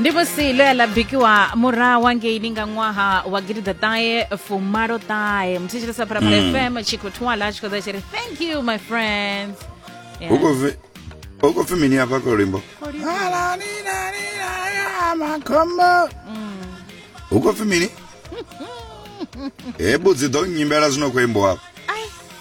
ndi musi ḽo ya ḽa bikiwa murahu hangeini nga ṅwaha wa gidiḓaṱahe fumalo ṱahe muthetshelesa phalaphala mm. fm tshi khou thwala tshi khou ḓa tshi ri thank you my friends hu khou pfi mini afha kho luimbo makhombo hu khou pfi mini he budzi ḓo nyimbela zwino khou imbo afho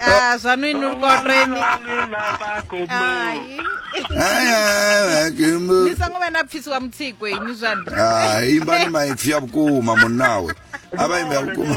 Ah, zwaṋu inwi lukoreni ni songo vha na pfisi wa mutsiko inwi zwaṋu ah, imba ni maipfi a vhukuma munnawe a vha imbe a vhukuma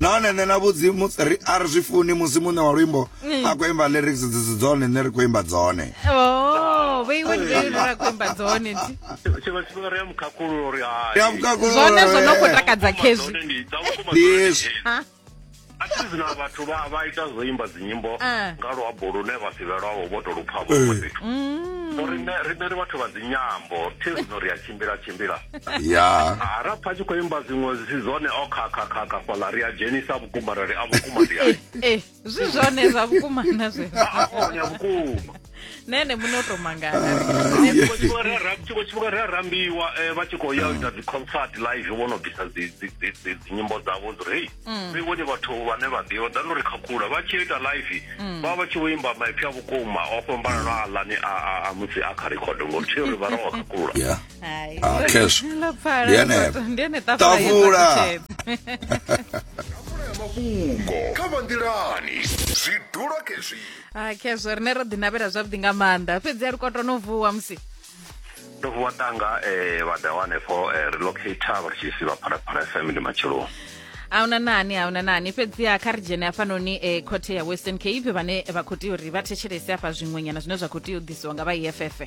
nahone nṋe na vhudzi a ri zwi funi musi muṋe wa luimbo mm. a khou imba lyrics dzi si dzone nṋe ri khou imba dzone oh, ndi hezwi na vhathu vha vha ita zwo imba dzinyimbo ah. nga luambo lune vha si vhe lwavho vho to lupfa vho eh. fhethu mm. rine rine ri vhathu vha dzinyambo thi zwino ri a tshimbila tshimbila ya ah, ra pfa tshi khou imba dziṅwe zwi si zwone o khakhakhakha fhaḽa ri a dzhenisa vhukuma ra ri a vhukuma ndi ai eh, eh, zwi zwone zwa vhukuma na zwezwo a ah, vhukuma nene muno to mangana tshiko tshifhinga ri a rambiwa eh, vha tshi khou ya u ita dziconcert live vho no bvisa dzinyimbo dzavho dzi rei mm. ri vhone vhathu vhane vha ḓivha ḓa no ri khakhula vha tshi ita live mm. vha vha tshi vho imba maipfi a vhukuma o fhambanano a lani a musi a kha record ngori tshi ri vha rowa khakhula tafula mafhungo kha vha nḓilani zwidulo kezwi ha khezwo rine ro ḓinavhela zwavhuḓi nga maanḓa fhedzi a ri kwatwa no vuwa musi ndo vuwa tanga um eh, vha ḓa wanefho um eh, relocator vha ri tshi si vha phalaphala fm ndi matsheloni ahuna nani ahuna nani fhedziha kha ri dzhene hafhanoni e eh, khothe ya western cape vhane vha khou tea uri vha thetshelese hafha zwiṅwenyana zwine zwa khou tea u ḓisiwa nga vha eff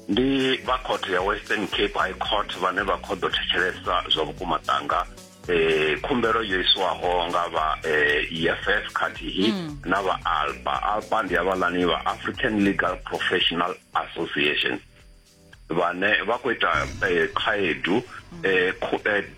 ndi vha khothe ya western cape high court vhane vha khou ḓo thetshelesa zwa vhukuma tanga eh khumbelo yo iswaho nga vha eh EFF khathihi mm. na vha ALPA ALPA ndi avhalani vha African Legal Professional Association vhane vha khou ita eh, khaedu mm. eh,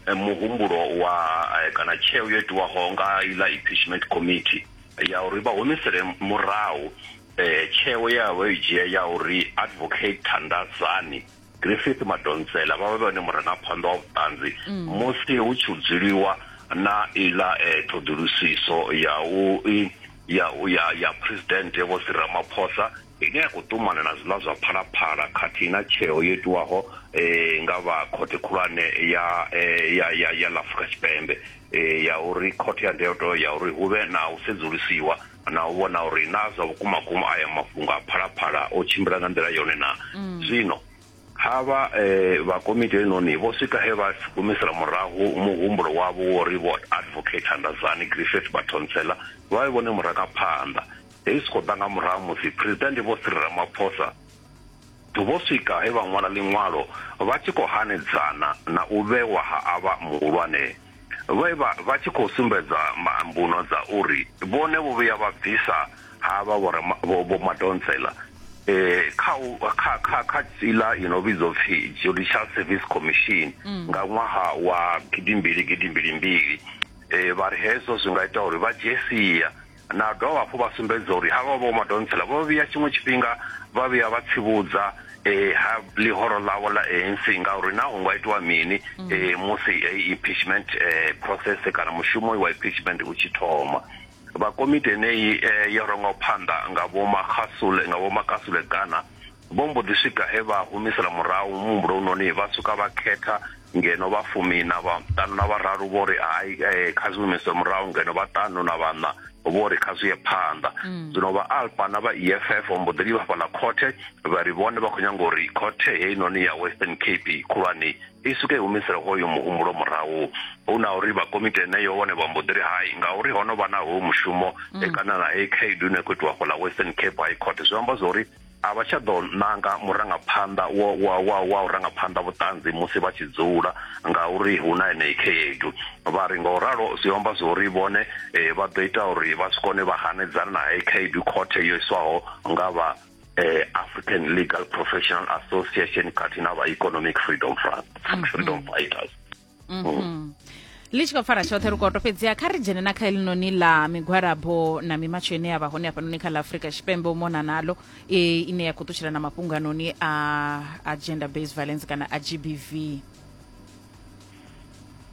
eh, muhumbulo wa kana tsheo yo itiwaho nga ila impeachment committee ya uri vha humisele murahu eh tsheo yavho i dzhia ya uri advocate Thandazani Griffith Madonsela vha vha vhone murangaphanḓa wa vhuṱanzi mm. musi hu tshi dzuliwa na iḽa eh, ṱhoḓulusiso ya u ya ya ya president vho Cyril Ramaphosa ine ya khou ṱumana na zwiḽa zwa phalaphala khathihi na tsheo yo itiwaho eh, nga vha khothe khulwane ya eh, ya ya ya Afrika Tshipembe eh, ya uri khothe ya ndeoto ya uri hu vhe na u sedzulusiwa na u vhona uri na zwa vhukuma kuma aya mafhungo a phalaphala o tshimbila nga nḓila yone na mm. zwino ha vha eh, vha komiti enoni vho swika he vha gumisela murahu muhumbulo wavho wo ri vho advocate handazani griffith batonsela vha vhe vhone murangaphanḓa hei zwi khou ḓa nga murahu musi presidente vho siri ramaphosa Vho swika he vha ṅwala ḽiṅwalo vha tshi khou hanedzana na u vhewa ha avha muhulwane vhe vha vha tshi khou sumbedza mbuno dza uri vhone vho vhuya vha bvisa havha vho Madonsela kha kha kha kha iḽa i no vhidzwa pfi Judicial Service Commission nga ṅwaha wa gidimbili gidimbili mbili vha ri hezwo zwi nga ita uri vha dzhie sia. Na dovha hafhu vha sumbedza uri havha vho Madonsela vho vhuya tshiṅwe tshifhinga vha vhuya vha tsivhudza eh, ha ḽihoro ḽavho ḽa ANC ngauri na hu nga itiwa mini mm. eh, musi eh, impeachment eh, process kana mushumo wa impeachment u tshi thoma vha komiti eneyi eh, yo rongaho phanḓa nga vho Makgasule nga vho Makasule kana Vho mbo ḓi swika he vha humisela murahu muhumbulo unoni, vha swika vha khetha, ngeno vha fumi na vhaṱanu na vhararu vho ri hai, eh, kha zwi humiswe murahu, ngeno vhaṱanu na vhaṋa vho ri kha zwi ye phanḓa. Mm. Zwino vha Alpa na vha EFF vho mbo ḓi livha fhaḽa khothe, vha ri vhone vha khou nyanga uri khothe heinoni ya Western Cape khulwane i swike i humisele hoyo muhumbulo murahu. Hu na uri vha komiti heneyo vhone vha mbo ḓi ri hai, ngauri ho no vha na hoyu mushumo mm. kana na heyi khaedu ine khou itiwa fhaḽa Western Cape High Court, zwi amba zwa uri a vha tsha ḓo nanga murangaphanḓa wa wa wa wa u rangaphanḓa vhuṱanzi musi vha tshi dzula ngauri hu na enei khaedu vha ri nga u ralo zwi amba zwo ri vhone eh, vha ḓo ita uri vha si kone vha hanedzana na hei khaedu khothe yo iswaho nga vha eh, african legal professional association khathihi na vha economic freedom front freedom fighters mm -hmm. ḽi tshi khou pfara tshoṱhe ri koto fhedziha kha ri dzhene na kha eḽinoni ḽa migwalabo na mimatsho ine ya vha hone hafhanoni kha ḽa afurika tshipembe u mona nalo e, ine ya khou ṱutshela na mafhungo anoni a, a gender based violence kana a g b v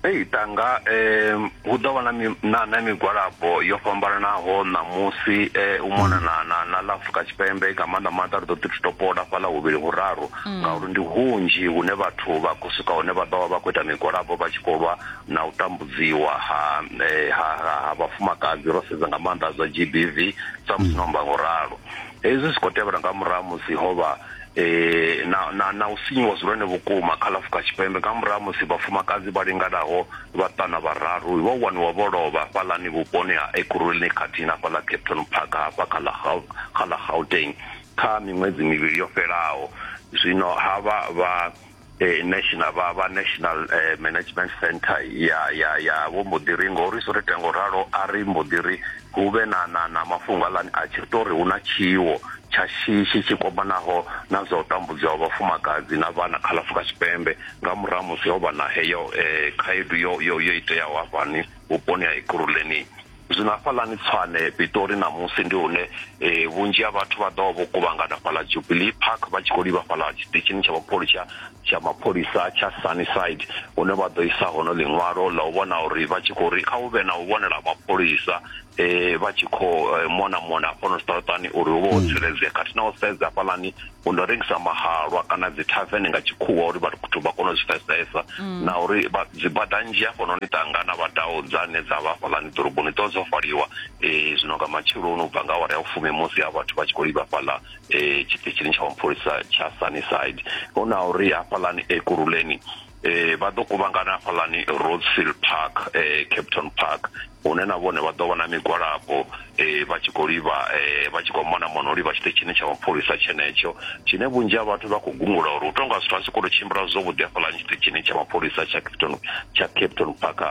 ei tanga um hu ḓo vha na na migwalabo yo fhambananaho ṋamusi um u mona na na na ḽa afurika tshipembe nga maanḓa maanḓa ri ḓo ḓi topola fhaḽa huvhili huraru mm. ngauri ndi hunzhi hune vhathu vha khou swika hune vha ḓo vha vha khou ita migwalabo vha tshi khou lwa na u tambudziwa ha eh, ha ha vhafumakadzi ro sedza nga maanḓa zwa g b v samusi mm. no amba ngo ralo hezwi zwi khou tevhela nga murahu musi ho vha eh na na na u sinyiwa zwone vhukuma kha lafuka tshipembe nga murahu musi vhafumakadzi vha linganaho vhaṱana vhararu vho waniwa vho lovha fhalani vhuponi ha ekurulini khathihi na fhala capton park hafha kha la gauteng kha miṅwedzi mivhili yo fhelaho zwino ha vha vha eh, national vha vha national eh, management center ya ya ya vho mbo ḓi ri ngori so ri ita ngo ralo a ri mbo ḓi ri hu vhe na na na mafhungo aḽani a tshi tori hu na tshiwo tsha shishi tshi kwamanaho na zwa u tambudzwa ha vhafumakadzi na vhana kha ḽafrika tshipembe nga murahu musi ho vha na heyo eh, khaedu yo yo yo iteaho hafhani vhuponi ha ikuruleni Zwino hafhaḽani Tshwane, Pitori ṋamusi ndi hune e, vhunzhi ha vhathu vha ḓo vha vho kuvhangana fhaḽa Jubilee Park vha tshi khou livha fhaḽa tshiṱitshini tsha mapholisa tsha mapholisa tsha Sunnyside hune vha ḓo isa hono ḽiṅwalo ḽa u vhona uri vha tshi khou ri kha hu vhe na u vhonela mapholisa e, vha tshi khou e, mona mona hafhano zwiṱaraṱani uri hu vhe ho tsireledzea khathihi na u sedza hafhaḽani u ndo rengisa mahalwa kana dzi tavern nga tshikhuwa uri vhathu vha kone u zwi pfesesa mm. na uri dzi bada nzhi hafhanoni tangana vha dao dzane dza vha fhalani ḓoroboni ḓo dzo faliwa um zwino nga matsheloni u bva nga awara ya ufumi musi ha vhathu vha tshi khou livha fhaḽa um eh, tshiṱitshini tsha mapholisa tsha sunnyside hu na uri hafhalani ekuruleni eh vha ḓo kuvhangana hafhaḽani Rosefield Park eh Capton Park hune na vhone vha ḓo vha na migwalabo eh vha tshi khou livha eh vha tshi khou mona mona u livha tshiṱitshini tsha mapholisa tshenetsho tshine vhunzhi ha vhathu vha khou gungula uri hu tou nga zwithu a si khou tou tshimbila zwavhuḓi hafhaḽani tshiṱitshini tsha mapholisa tsha Capton tsha Capton Park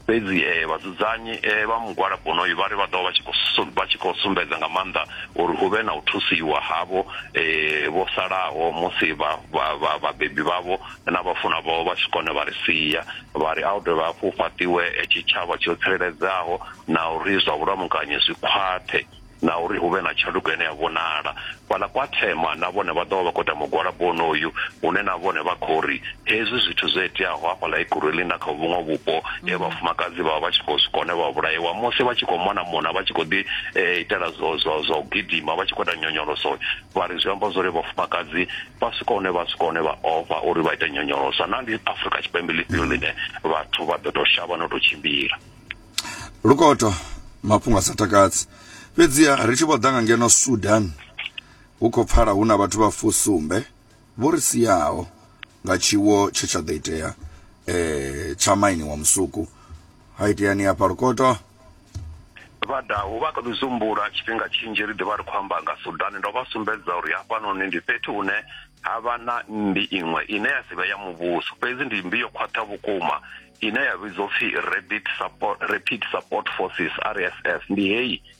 fhedzi eh vhadzudzanyi eh vha mugwalabo onoyu vha ri vha ḓo vha tshi khou vha tshi khou sumbedza nga maanḓa uri hu vhe na u thusiwa havho eh vho salaho musi vha vhabebi vhavho na vhafunwa vhao vha tshi kone vha ri sia, vha ri a hu dovhe hafhu hu fhaṱiwe tshitshavha tsho tsireledzaho na uri zwa vhulamukanyi zwi khwaṱhe na uri hu vhe na tshanduko ine ya vhonala. Fhaḽa kwa Thema na vhone vha ḓo vha vha khou ita mugwalabo wonoyu hune na vhone vha khou ri hezwi zwithu zwo iteaho hafhaḽa Ekurhuleni na kha vhuṅwe vhupo he vhafumakadzi vha vha vha tshi khou zwi kone vha vhulaiwa musi vha tshi khou mona mona vha tshi khou ḓi itela zwo zwo zwa u gidima vha tshi khou ita nyonyoloso vha ri zwi amba zwori vhafumakadzi vha swika hune vha swika hune vha ofha uri vha ite nyonyolosa na ndi afrika tshipembe ḽifhio mm. ḽine vhathu vha ḓo tou shavha no tou tshimbila lukoto mafhungo a sa takadzi fhedziha ri tshi vho ḓa nga ngeno sudan hu khou pfala hu na vhathu vha fusumbe vho ri siaho nga tshiwo tshe tsha ḓo itea eh, tsha maini wa musuku ha iteani hafha lukoto vhadahu vha kha ḓi zumbula tshifhinga tshinzhi ri ḓivha ri khou amba nga sudani ndo vha sumbedza uri hafhanoni ndi fhethu hune ha vha na mmbi iṅwe ine ya si vhe ya muvhuso fhedzi ndi mmbi yo khwaṱha vhukuma ine ya vhidzwa upfi rapid support, rapid support forces rsf ndi heyi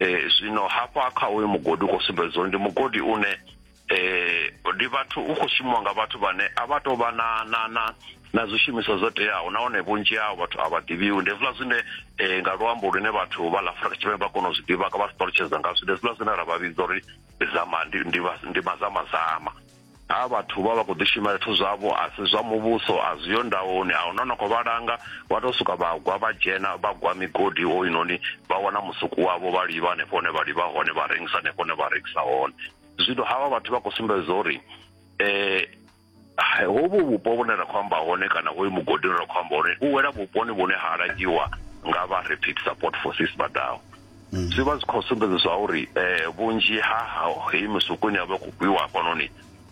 eh zwino hafha kha uyu mugodi u khou sumbedza uri ndi mugodi une eh ndi vhathu u khou shumiwa nga vhathu vhane a vha tou vha na na na na zwishumiswa zwo teaho nahone vhunzhi hao vhathu a vha ḓivhiwi ndi hezwiḽa zwine eh nga luambo lune vhathu vha ḽa Afrika Tshipembe vha kona u zwi ḓivha ka vha si ṱalutshedza ngazwo ndi hezwiḽa zwine ra vha vhidza uri zama ndi ndi mazamazama a vhathu vha vha khou ḓishumela zwithu zwavho a si zwa muvhuso a zwi yo ndawoni a huna no khou vha langa vha tou suka vha gwa vha dzhena vha gwa migodi hoyunoni vha wana musuku wavho vha livha hanefho hone vha livha hone vha rengisa hanefho hone vha rengisa hone zwino havha vhathu vha khou sumbedza uri um hovhu vhupo vhune ra khou amba hone kana hoyu mugodi une ra khou amba hone u wela vhuponi vhune ha langiwa nga vha rapid support forces vha ḓaho mm. zwi vha zwi khou sumbedza zwa uri um vhunzhi ha heyi misuku ine ya vha i khou gwiwa hafhanoni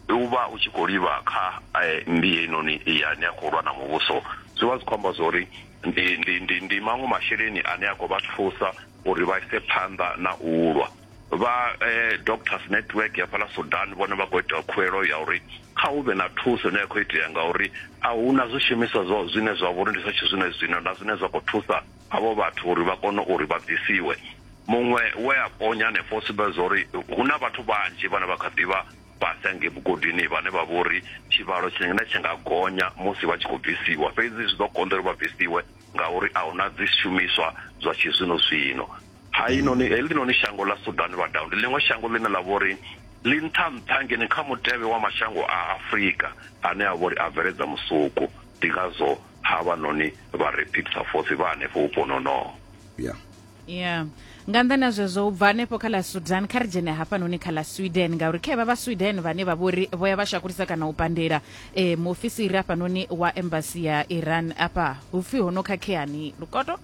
u vha u tshi khou livha kha um mmbi heinoni yane a khou lwa na muvhuso zwi vha zwi khou amba zwa uri ndi ndi ndi ndi maṅwe masheleni ane a khou vha thusa uri vha ise phanḓa na u lwa vha eh, doctors network ya fhala sudan vhone vha khou ita khuelo ya uri kha hu vhe na thuso ine ya khou itea ngauri a hu na zwishumiswa zwo zwine zwa vhori ndi zwa tshizwino zwino na zwine zwa khou thusa avho vhathu uri vha kone uri vha bvisiwe muṅwe we a ponya hanefho o sumbedza uri hu na vhathu vhanzhi vhane vha kha ḓivha fhasi hangei vhugodini vhane vha vha uri tshivhalo tshine tsha nga gonya musi vha tshi khou bvisiwa fhedzi zwi ḓo konḓa uri vha bvisiwe ngauri a huna dzi shumiswa zwa tshi zwino zwino ha inoni heḽinoni shango ḽa Sudan vha down ndi ḽiṅwe shango ḽine ḽa vha uri ḽi nṱha nṱha ngeni kha mutevhe wa mashango a Afrika ane a vha uri a bveledza musuku ndi ngazwo havhanoni vha Rapid sa Force vha hanefho vhuponi honoho. Yeah. Yeah. nga nḓani ha zwezwo u bva hanefho kha ḽa sudan kha ri dzhene hafhanoni kha ḽa sweden ngauri kha vha vha sweden vhane vha vhori vho ya vha shakulisa kana u pandela um muofisiri hafhanoni wa embasi ya iran afha hu pfhi ho no khakheani lukoto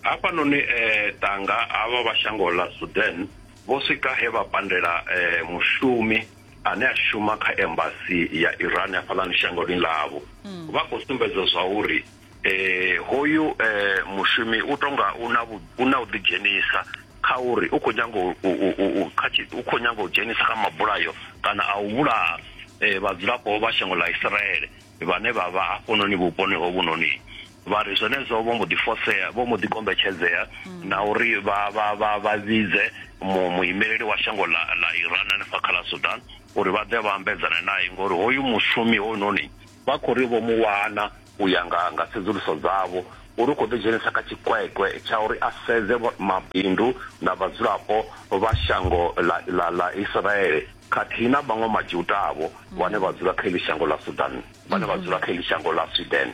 hafhanoni um eh, tanga havha vha shango ḽa sudan vho swika he vha pandela um mushumi ane a shuma kha embassy ya Iran hafhaḽani shangoni ḽavho mm. vha khou sumbedza zwa uri eh hoyu eh mushumi u tonga una una u ḓi dzhenisa kha uri u khou nyanga u kha u khou nyanga u dzhenisa kha mabulayo kana a u vhulaha eh vhadzulapo vha shango ḽa Israel vhane vha vha hafhononi vhuponi hovhunoni vha ri zwenezwo vho mbo ḓi fosea vho mbo ḓi kombetshedzea mm. na uri vha vha vha vha vhidze muimeleli wa shango ḽa ḽa Iran hanefha kha ḽa Sudan uri vha ḓe vha ambedzana naye ngori hoyu mushumi hoyunoni vha khou ri vho mu wana u ya nga nga tsedzuluso dzavho uri u khou ḓi dzhenisa kha tshikwekwe tsha uri a sedze mabindu na vhadzulapo vha shango ḽa ḽa ḽa Israele khathihi na vhaṅwe Majuda-vho vhane vha dzula kha iḽi shango ḽa Sudan, vhane vha dzula kha iḽi shango ḽa Sweden.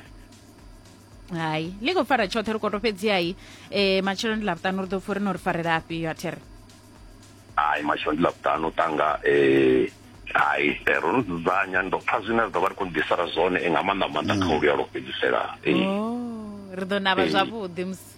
hai ḽi khou fara tshoṱhe ri koto fhedzihai um matshelo ndi ḽavhuṱanu ri ḓo pfha uri no ri farela afhi yo athere hai matshelo ndi ḽavhuṱanu tanga um hai eh, ro no dzudzanya ndo pfha zwine ra ḓo vha ri khou ḓisara zwone eh, nga maanḓa maanḓa kha u luyalo fhedzisela eh. Oh, ri ḓo navha Eh. zwavhuḓi musi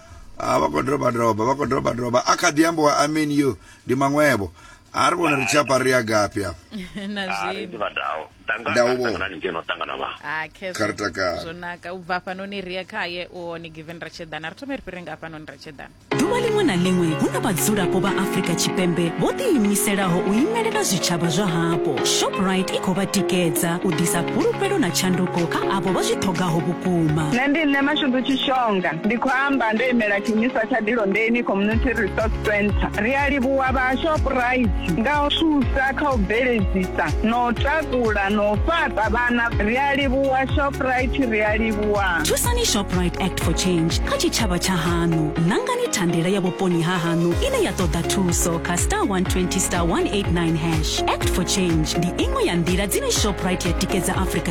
a vha khou doba doba vha khou doba doba a kha ḓi ambiwa amen yo ndi maṅwevho a ri vhona ri tshi apa ri ya gafhi afho na Ah, ri zwino ḓivha ndao Ndanga- Ndao vho. Ndangana ni ngeno ho ṱangana vha Ah, khezwo. Kha ri takale. zwo naka u bva hafhanoni ri ye khaye u hone given ra tsheḓana ri thome ri fhire nga hafhanoni ra tsheḓana ḓuvha ḽiṅwe na ḽiṅwe hu na vhadzulapo vha afrika tshipembe vho ḓiimiselaho u imelela zwitshavha zwa hapo shoprite i khou vha tikedza u ḓisa fhulufhelo na tshanduko kha avho vha zwi ṱhogaho vhukuma nṋe ndi nṋe mashudu tshishonga ndi khou amba ndo imela tshiimiswa tsha dilondeni community resource center ri a livhuwa vha shoprite nga u thusa kha u bveledzisa na u takula na u fhaṱa vhana ri a livhuwa shoprite ri a livhuwa thusani shoprite act for change kha tshitshavha tsha haṋu nangani thandela ya vhuponi ha haṋu ine ya ṱoḓa thuso kha star 120 star 189 hash act for change ndi iṅwe ya nḓila dzine shoprite ya tikedza afrika